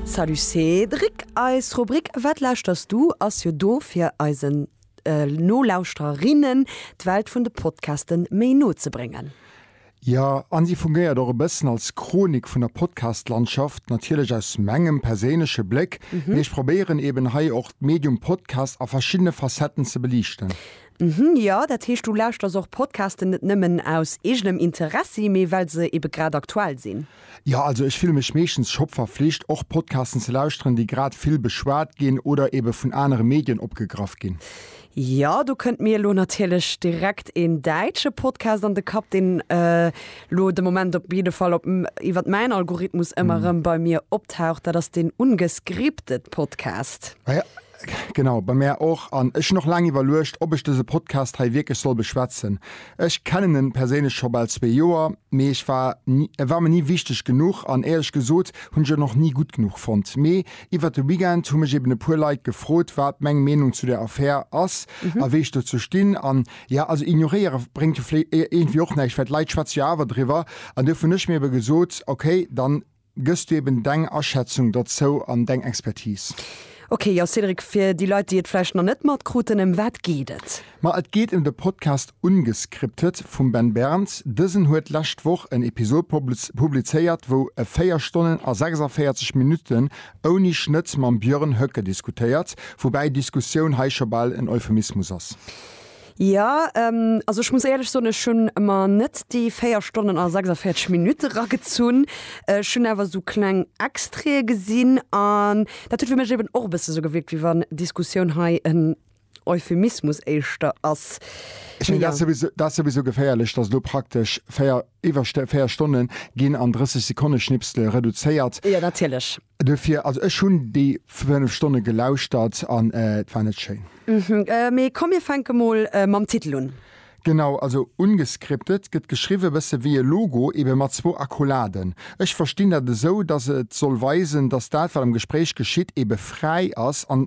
Salut Cédric, eis Rubrik Wat lauschters du? ass jo do fir eisen Nolauschtererinnen d'Welt vun de Podcaste méi no ze bréngen. Jo, an si fungéiert och e bëssen als Chronik vun der Podcast-Landschaft, natierlech aus mengem perséinleche Bléck, mee ech probéieren eben hei och d'Medium Podcast a verschiddene Facetten ze beliichten. Mhhm, jo, dat heescht du lauschters och Podcasten net nëmmen aus eegenem Interessi, mee well se ebe grad aktuell sinn? Jo, also ech fille mech meeschtens scho verflicht, och Podcasten ze lauschteren, déi grad vill beschwat ginn oder ebe vun anere Medien opgegraff ginn. Jo, do kënnt mir elo natierlech direkt een däitsche Podcast an de Kapp, deen elo de Moment op jidde Fall op iwwert mäin Algorithmus ëmmer erëm bei mir optaucht, dat ass den Ungescripted Podcast. Ah jo. Genau, bei mär och. An ech hunn och laang iwwerluecht, ob ech dëse Podcast hei wierklech soll beschwätzen. Ech kennen en perséinlech scho bal zwee Joer, mee ech war ni, e war mer ni wichteg genuch an éierlech gesot hunn ech en och ni gutt genuch fonnt. Mee iwwert de Weekend hu mech eben e puer Leit gefrot, wat meng Meenung zu där Affär ass a wéi ech dozou stinn. An ja, also ignoréiere bréngt jo vlé, iergendwéi och näischt, well d'Leit schwätze jo awer driwwer. An duerfir hunn ech mir ebe gesot, okay, dann, gëss du eben deng Aschätzung derzou an deng Expertise. Ok, jo Cédric, fir déi Leit déi et vläicht nach net matkruten, ëm wat geet et? Ma et geet ëm de Podcast Ungescripted vum Ben Berns. Dësen huet d'lescht Woch en Episod publizéiert, wou e 4 Stonnen a 46 Minutten ouni Schnëtt mam Björn Höcke diskutéiert, woubäi Diskussioun hei scho bal en Euphemismus ass. Ja, also ech muss éierlech soen, ech hunn mer net déi 4 Stonnen a 46 Minutte eragezunn. Ech hunn awer esou kleng Extraite gesinn an dat huet fir mech eben och e bësse sou gewierkt, wéi wann Diskussioun hei en Euphemismus éischter ass. Ech mengen, dat ass souwisou, dat ass souwisou geféierlech, dass elo praktesch 4, iwwer 4 Stonne ginn an 30 Sekonneschnipsele reduzéiert. Jo, natierlech. Duerfir, also ech hunn déi fënnef Stonne gelauschtert an et war net schéin. Mee komm mir fänke mol mam Titel un. Genau, also ungescripted gëtt geschriwwen e bësse wéi e Logo, ebe mat zwou Akkoladen. Ech verstinn dat esou, dass et soll weisen, dass dat wat am Gespréich geschitt ebe fräi ass an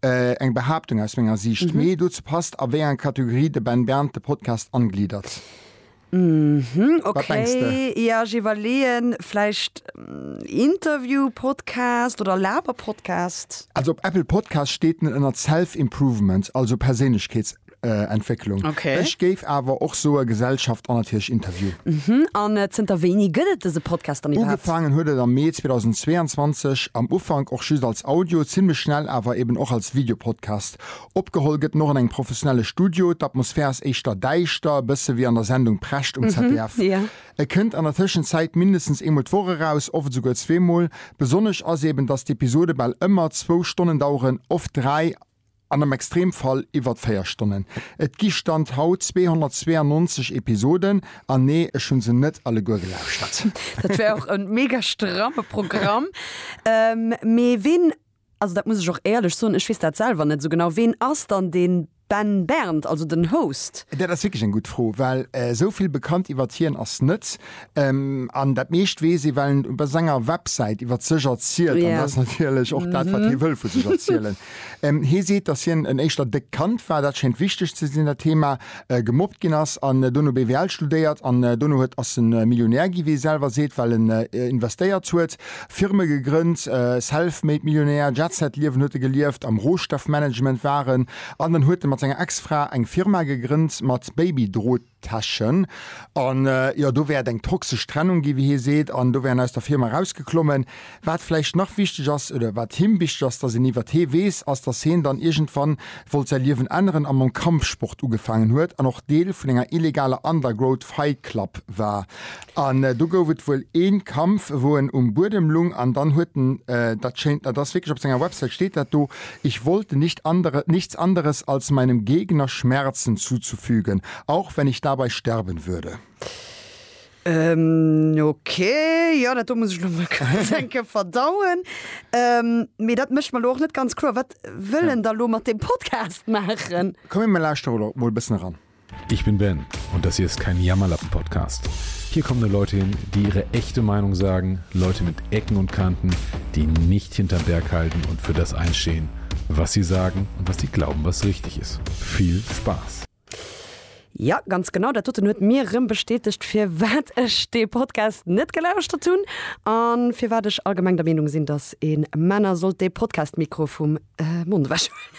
Eng Behaaptung aus menger Siicht, mee dozou passt, a wéi enger Kategorie de Ben Bernd de Podcast angliddert. Wat mengs de? Okay, jo, ech iwwerleeën, vläicht Interview-Podcast oder Laber-Podcast? Also op Apple Podcast steet en ënnert Self-Improvement, also Perséinlechkeets. Äh, Entwécklung. Okay. Ech géif awer och soe Gesellschaft an natierlech Interview. Mhm. An äh, zënter wéini gëtt et dëse Podcast dann iwwerhaapt? Ugefaangen huet et am Mee 2022, am Ufank och just als Audio, zimmlech schnell awer eben och als Videopodcast. Opgeholl gëtt en och an engem professionelle Studio, d'Atmosphär ass éischter däischter, e bësse wéi an der Sendung Precht um ZDF. ja. E kënnt an der Tëschenzäit mindestens eemol d'Woch eraus, oft esouguer zweemol. Besonnesch ass eben, datt d'Episode bal ëmmer zwou Stonnen daueren, oft dräi. an am Extremfall iwwert 4 Stonnen. Et gi Stand haut 292 Episoden, an nee, ech hu se net alleguer gelauschtert. Dat wär och e mega stramme Programm. Mee ween, also dat muss ech och éierlech soen, ech weess dat selwer net esou genau, ween ass dann de Ben Bernd, also den Host? Dat ass wierklech eng gutt Fro, well esou vill bekannt iwwert hien ass net. An dat meescht weess ee, well en op senger Websäit iwwer sech erzielt. An dat ass natierlech och dat, wat hie wëll vu sech erzielen. Hie seet, datt hien en éischter déckt Kand war, dat schéngt wichteg ze sinn, dat Theema, gemobbt ginn ass an dono BWL studéiert an dono huet, ass e Millionär ginn, wéi e selwer seet, well en investéiert huet, Firme gegrënnt, Self-Made-Millionär, Jet-Set-Liewen huet e gelieft, am Rohstoffmanagement war en. An dann huet e mat senger Ex-Fra eng Firma gegrënnt mat Baby-Droot. Täschen. An jo, do wär et eng toxesch Trennung ginn, wéi hie seet, an do wär en aus der Firma erausgeklommen. Wat vläicht nach wichteg ass, oder wat him wichteg ass, datt een iwwert hee weess, ass, datt hien dann iergendwann wollt säi Liewen änneren a mam Kampfsport ugefaangen huet an och Deel vun enger illegaler Undergroad Fight Club war. An do gouf et wuel ee Kampf, wou en um Buedem lung an dann huet en, dat schéint, dat ass wierklech, op senger Websäit steet dat do, Ich wollte nicht andere, nichts anderes als meinem Gegner Schmerzen zuzufügen, auch wenn ich dabei sterben würde. Ok, jo, dat do muss ech elo mol kuerz eng Kéier verdauen. Mee dat mécht mer elo och net ganz kloer, wat wëll en da elo mat deem Podcast maachen? Komm mir lauschteren elo mol e bëssen eran. Ich bin Ben und das hier ist kein Jammerlappen Podcast. Hier kommen nur Leute hin, die ihre echte Meinung sagen, Leute mit Ecken und Kanten, die nicht hinterm Berg halten und für das einstehen, was sie sagen und was sie glauben, was richtig ist. Viel Spaß! Jo, ganz genau, dat doten huet mir rëm bestätegt, firwat ech dee Podcast net gelauschtert hunn an firwat ech allgemeng der Meenung sinn, dass een Männer sollt dee Podcast-Mikro vum Mond ewechhuelen.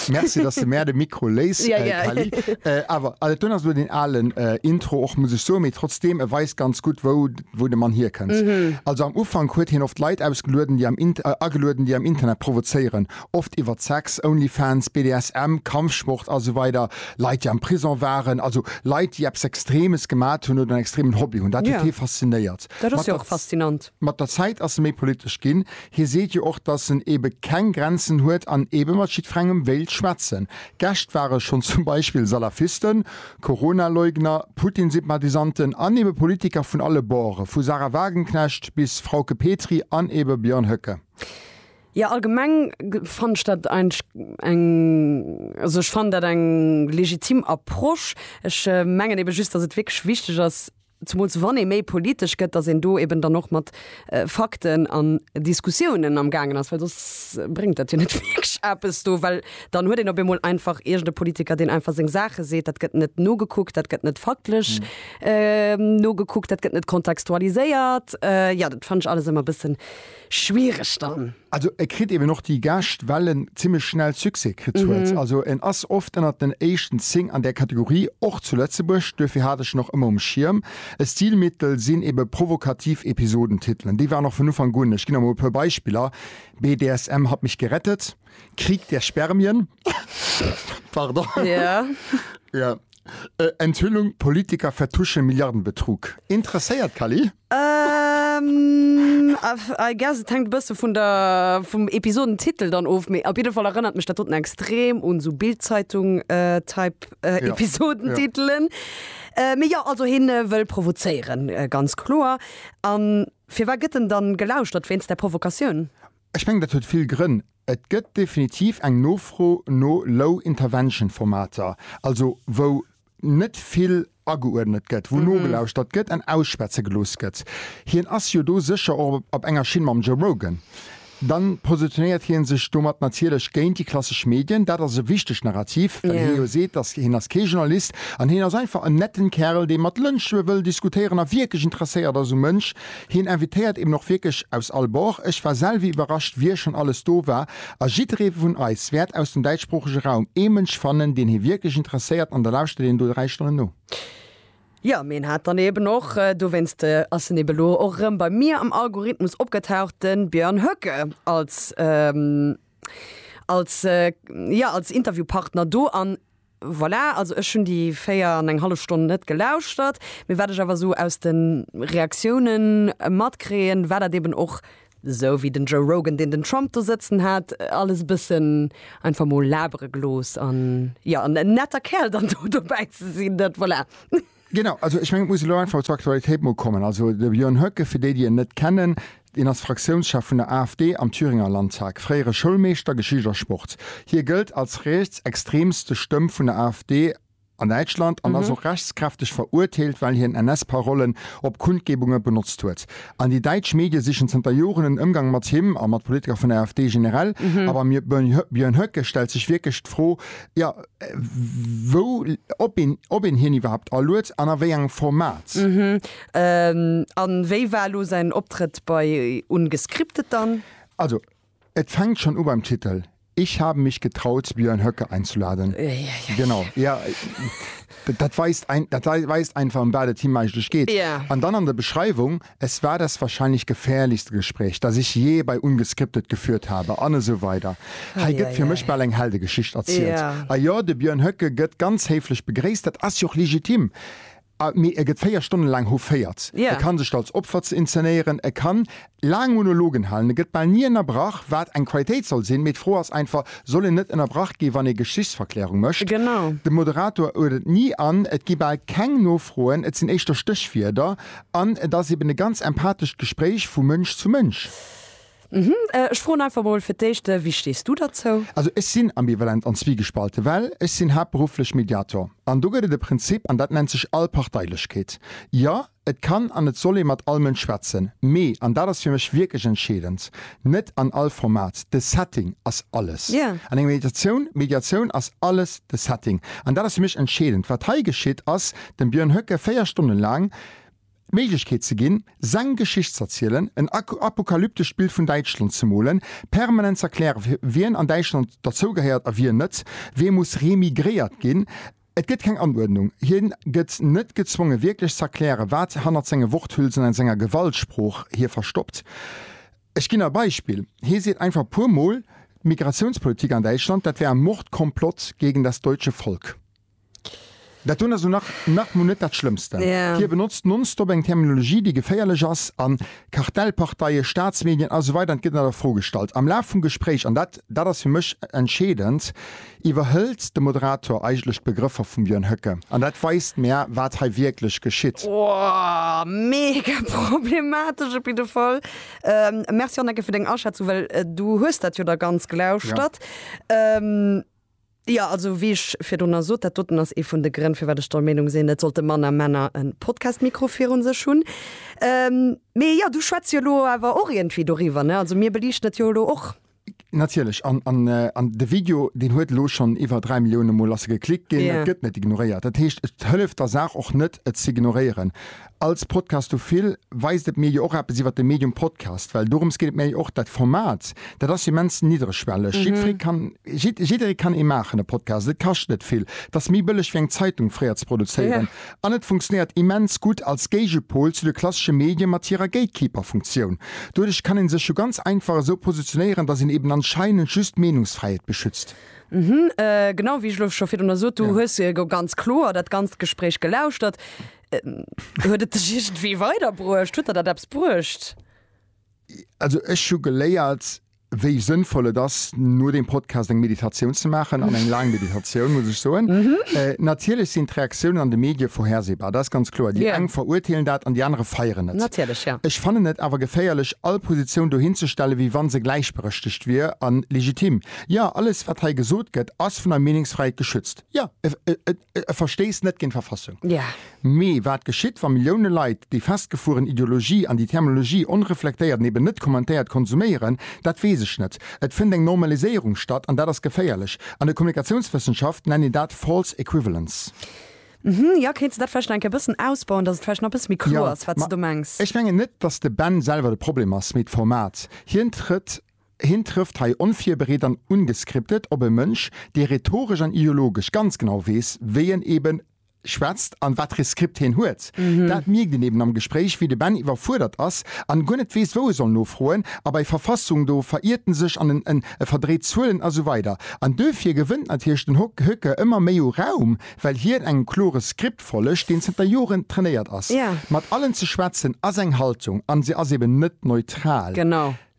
Merci, dass du mär de Mikro léis, ja, ja. Kali. Äh, awer also, dun ass lo den alen äh, Intro och muss ech so, méi trotzdem e weist ganz gutt wou wou de Mann hierkënnt. Mm -hmm. Also am Ufank huet hien oft Leit ausgelueden, déi am Int äh, agelueden, déi am Internet provozéieren. Oft iwwert Sex, Onlyfans, BDSM, Kampfsport a sou weider. Leit, déi am Prison waren, also Leit, déi eppes Extremes gemat hunn oder en extremen Hobby hunn. Dat huet yeah. hie faszinéiert. Dat ass jo och faszinant. Mat der Zäit ass e méi politesch ginn. Hie seet jo och, datt en ebe keng Grenzen huet an ebe mat jiddferengem wéilt schwätzen. Gäscht ware schonn zum Beispill Salafisten, Corona-Leugner, Putin-Sympathisanten an ebe Politiker vun alle Borde, vu Sahra Wagenknecht bis Frauke Petry an ebe Björn Höcke. Jo, allgemeng fannt ech dat eigentlech eng, also ech fannen dat eng legitim Approche. Ech mengen ebe just, datt et wierklech wichteg ass, Zemools wann ee méi politesch gëtt, datt een do eben dann och mat Fakten an Diskussiounen am gaangen ass, well soss bréngt dat jo net wierklech eppes do, well dann huet een op eemol einfach iergend e Politiker, deen einfach seng Saache seet. Dat gëtt net nogekuckt, dat gëtt net faktlech nogekuckt, dat gëtt net kontextualiséiert. Jo, dat fannen ech alles ëmmer e bëssen. schwiereg dann. Also e kritt eben och déi Gäscht, well en zimmlech schnell Succès kritt huet. Also en ass oft ënnert den éischten 10 an där Kategorie, och zu Lëtzebuerg, duerfir hat ech en och ëmmer um Schierm. E Stilmittel sinn ebe provokativ Episodentitelen. Déi waren och vun Ufank un, ech ginn der mol e puer Beispiller, BDSM hat mich gerettet, Krieg der Spermien, pardon, jo, Enthüllung, Politiker vertuschen Milliardenbetrug. Interesséiert, Cally? I guess et hänkt e bësse vun der, vum Episodentitel dann of, mee op jidde Fall erënnert mech dat doten extrem un sou Bild-Zeitung Type Episodentitelen. Mee jo, also hien wëll provozéieren, ganz kloer. An firwat gëtt en dann gelauschtert, wéinst der Provokatioun? Ech mengen, dat huet vill Grënn. Et gëtt definitiv eng Nofro no Low Intervention Formater, also wou net vill ageuerdnet gëtt, wou nogelauschtert gëtt an ausschwätze gelooss gëtt. Hien ass jo do sécher och op enger Schinn mam Joe Rogan. Da positionéiert hie sech domat natierlech géint déi klassesch Medien. Dat ass e wichtegt Narrativ, well hie jo seet, datt hien ass kee Journalist an hien ass einfach en netten Kärel, dee mat Lënsche wëll diskutéieren a wierklech interesséiert ass um Mënsch Hien invitéiert eben och wierklech aus all Bord. Ech war selwe iwwerrascht, wie schonn alles do war. A jidderee vun eis wäert aus dem däitschsproochege Raum ee Mënsch fannen, deen hie wierklech interesséiert, an da lauschtert een do dräi Stonnen no. Jo, mee en hat dann eben och, dowéinst ass en eben elo och erëm bei mir am Algorithmus opgetaucht, de Björn Höcke als, als, jo, als Interviewpartner do. An Voilà, also ech hunn déi véier an eng hallef Stonn net gelauschtert, mee wat ech awer esou aus de Reaktioune matkréien, war dat eben och esou wéi den Joe Rogan, deen den Trump do sëtzen hat, alles e bëssen einfach mol labere gelooss. An jo, en netter Kerl dann do dobäi ze sinn, dat, voilà. Genau, also ech mengen, et muss elo einfach zur Aktualitéit mol kommen. Also de Björn Höcke, fir déi, déi en net kennen, deen ass Fraktiounschef vun der AfD am Thüringer Landtag, fréiere Schoulmeeschter, Geschicht a Sport. Hie gëllt als rietsextreemste Stëmm vun der AfD an Däitschland an ass och rechtskräfteg verurteelt, well hien NS-Parollen op Kundgebunge benotzt huet. An déi däitsch Medie sichen zënter Joren en Ëmgang mat him a mat Politiker vun der AfD generell. A beim Björn Höcke stellt sech wierklech d'Fro, jo, wou, ob een, ob een hien iwwerhaupt alued an a wéi engem Format. An wéi war elo säin Optrëtt bei Ungescriptet dann? Also, et fänkt schon u beim Titel, Ich habe mich getraut, Björn Höcke einzuladen. Uiuiui. Genau, ja, dat weist, dat weist einfach, ëm wat et him eigentlech geet. An dann an der Beschreiwung, Es war das wahrscheinlich gefährlichste Gespräch, das ich je bei Ungescriptet geführt habe an esou weider Hei gëtt fir mech bal eng Heldegeschicht erzielt. A jo, de Björn Höcke gëtt ganz héiflech begréisst, dat ass jo och legitim, mee e gëtt 4 Stonnen laang houféiert, e kann sech do als Opfer ze inzenéieren, e kann laang Monologen halen, e gëtt bal ni ënnerbrach, wat eng Qualitéit soll sinn, mee d'Fro ass einfach, soll een net ënnerbrach gi wann ee Geschichtsverklärung mécht? De Moderator huet et ni an, et gi bal keng Nofroen, et sinn éischter Stéchwierder. An et ass eben e ganz empathescht Gespréich vu Mënsch zu Mënsch. Ech froen einfach mol fir d'éischt, Wéi stees du derzou? Also ech sinn ambivalent an zwiegespalten, well ech sinn haaptberufflech Mediator. An do gëtt et e Prinzip an dat nennt sech Allparteilechkeet. Jo, et kann an et soll ee mat all Mënsch schwätzen, mee, an dat ass fir mech wierklech entscheedend, net an all Format. De Setting ass alles an enger Mediatioun. Mediatioun ass alles de Setting. An dat ass fir mech entscheedend. Wat hei geschitt, ass, dem Björn Höcke 4 Stonnen laang d'Méiglechkeet ze ginn, seng Geschicht z'erzielen, en apokalyptescht Bild vun Däitschland ze molen, permanent z'erklären, wien an Däitschland derzougehéiert a wien net, wee muss remigréiert ginn. Et gëtt keng Anuerdnung, hien gëtt net gezwongen, wierklech z'erklären, wat hannert senge Worthülsen an senger Gewaltsprooch hie verstoppt. Ech ginn e Beispill, Hie seet einfach e puer Mol, d'Migrationspolitik an Däitschland, dat wär ein Mordkomplott gegen das deutsche Volk. Dat dunn ass lo nach nach mol net dat Schlëmmsten. Hie benotzt nonstop eng Terminologie, déi geféierlech ass, a Kartellparteie, Staatsmedien, a sou weider, an et gëtt net a Fro gestallt am Laf vum Gespréich, an dat dat ass fir mech entscheedend, iwwerhëlt de Moderator eigentlech d'Begrëffer vum Björn Höcke. An dat weist mär, wat hei wierklech geschitt. Ohh, mega problematesch op jidde Fall. Merci Hanneke fir deng Aschätzung, well du hues dat jo da ganz glauschtert. Jo, also wéi ech virdrunner sot, dat doten ass ee vun de Grënn, firwat ech der Meenung sinn, et sollte manner Männer e Podcast-Mikro virun sech hunn. Mee jo, du schwätz jo elo awer och iergendwéi doriwwer, ne? Also mir beliichten et jo elo och. Natierlech. An de Video, deen huet elo schonn iwwer dräi Milliounen Mol ass e geklickt ginn. Et gëtt net ignoréiert. Dat heescht, et hëlleft der Saach och net, et z'ignoréieren. Als Podcastophil weist et mir jo och eppes iwwer de Medium Podcast, well dorëms geet et mir jo och. Dat Format, dat ass jo immens niddregschwelleg. Jiddweree kann, jid, jidderee kann ee maachen, e Podcast. Et kascht net vill. Et ass méi bëlleg, wéi eng Zeitung fréier ze produzéieren. Ja. An et funktionéiert immens gutt als Géigepol zu de klassesche Medien mat hirer Gatekeeper-Funktioun. Doduerch kann ee sech jo ganz einfach esou positionéieren, dass een eben anscheinend just d'Meenungsfräiheet beschützt. Mhm, genau wéi ech elo scho virdrunner sot. Du hues jo ganz kloer dat ganzt Gespréich gelauschtert. Ähm, huet et dech irgendwie weiderbruecht? Huet der dat eppes bruecht? Also ech hu geléiert, wéi sënnvoll et ass, no dem Podcast eng Meditatioun ze maachen, an eng laang Meditatioun, muss ech soen. Mhm. Äh, natierlech sinn d'Reaktiounen an de Medie vorhersehbar, dat ass ganz kloer. Déi yeah. eng verurteelen dat an déi anere feieren et. Natierlech, ja. Ech fannen et awer geféierlech, all Positioun do hinzestelle wéi wann se gläichberechtegt wier an legitim. Ja, alles, wat hei gesot gëtt, ass vun der Meenungsfräiheet geschützt. Ja, e Verstees net géint d'Verfassung. Mee wat geschitt, wa Millioune Leit déi festgefueren Ideologie an déi Terminologie onreflektéiert an eben net kommentéiert konsuméieren? Dat weess ech net. Et fënnt eng Normaliséierung statt an dat ass geféierlech. An der Kommunikatiounswëssenschaft nennt een dat False Equivalence. Hm, jo, kéints de dat vläicht nach eng Kéier e bëssen ausbauen, datt et vläicht nach e bësse méi kloer ass, wat s de do mengs? Ech mengen net, datt de Ben selwer de Problem ass, mee d'Format. Hien trëtt Hien trëfft hei onvirbereet an ungescriptet op e Mënsch, dee rhetoresch an ideologesch ganz genau weess, wéi en ebe schwätzt an wat Reskript hien huet. Dat mierkt een eben am Gespréich, wéi de Ben iwwerfuerdert ass an guer net weess, wou e soll nofroen. A bei Verfassung, do veriert en sech an en verdréit Zuelen a sou weider. An duerfir gewënnt natierlech den Hoeke ëmmer méi u Raum, well hien engem klore Skript follegt, deen zënter Joren trainéiert ass. Mat allen ze schwätzen ass eng Haltung an se ass eben net neutral. Genau.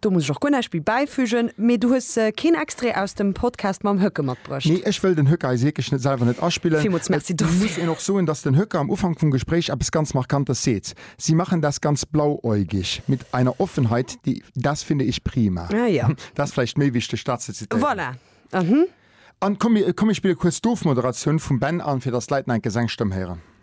Do muss ech och guer näischt méi bäifügen. Mee du hues keen Extrait aus dem Podcast mam Höcke matbruecht? Nee, ech wëll den Höcke eis wierklech net selwer net aspillen. Villmools Merci Et muss dofir. een och soen, dass den Höcke am Ufank vum Gespréich eppes ganz Markantes seet, Sie machen das ganz blauäugig, mit einer Offenheit, die, das finde ich prima. Ah jo. Dat ass vläicht méi wichteg, dat ze zitieren. Voilà. An komm, mir, komm, mir spille kuerz d'Ofmoderatioun vum Ben an, fir dass d'Leit nach eng Kéier seng Stëmm héieren.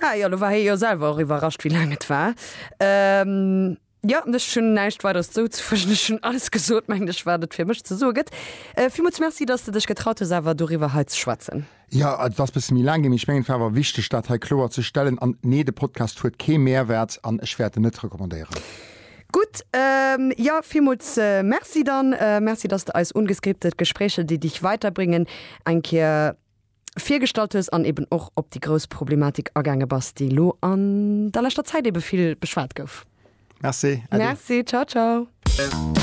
Ah jo, lo war hie jo selwer och iwwerrascht, wéi laang et war. Jo, ech hunn näischt Weideres zouzefügen. Ech hunn alles gesot, mengen ech, wat et fir mech ze soe gëtt. Villmools Merci, dass de dech getraut hues, awer doriwwer hei ze schwätzen. Jo, et ass e bësse méi laang ginn, mee ech mengen, et war awer wichteg, dat hei kloer ze stellen. An nee, de Podcast huet kee Mehrwert an ech wäert en net recommandéieren. Gutt, jo, villmools Merci dann. Merci, dass de eis Ungeskriptet, Gespräche, die dich weiterbringen eng Kéier. virgestallt hues an eben och op déi grouss Problematik agaange bass, déi elo an der leschter Zäit ebe vill beschwat gouf. Merci, äddi. Merci, ciao ciao.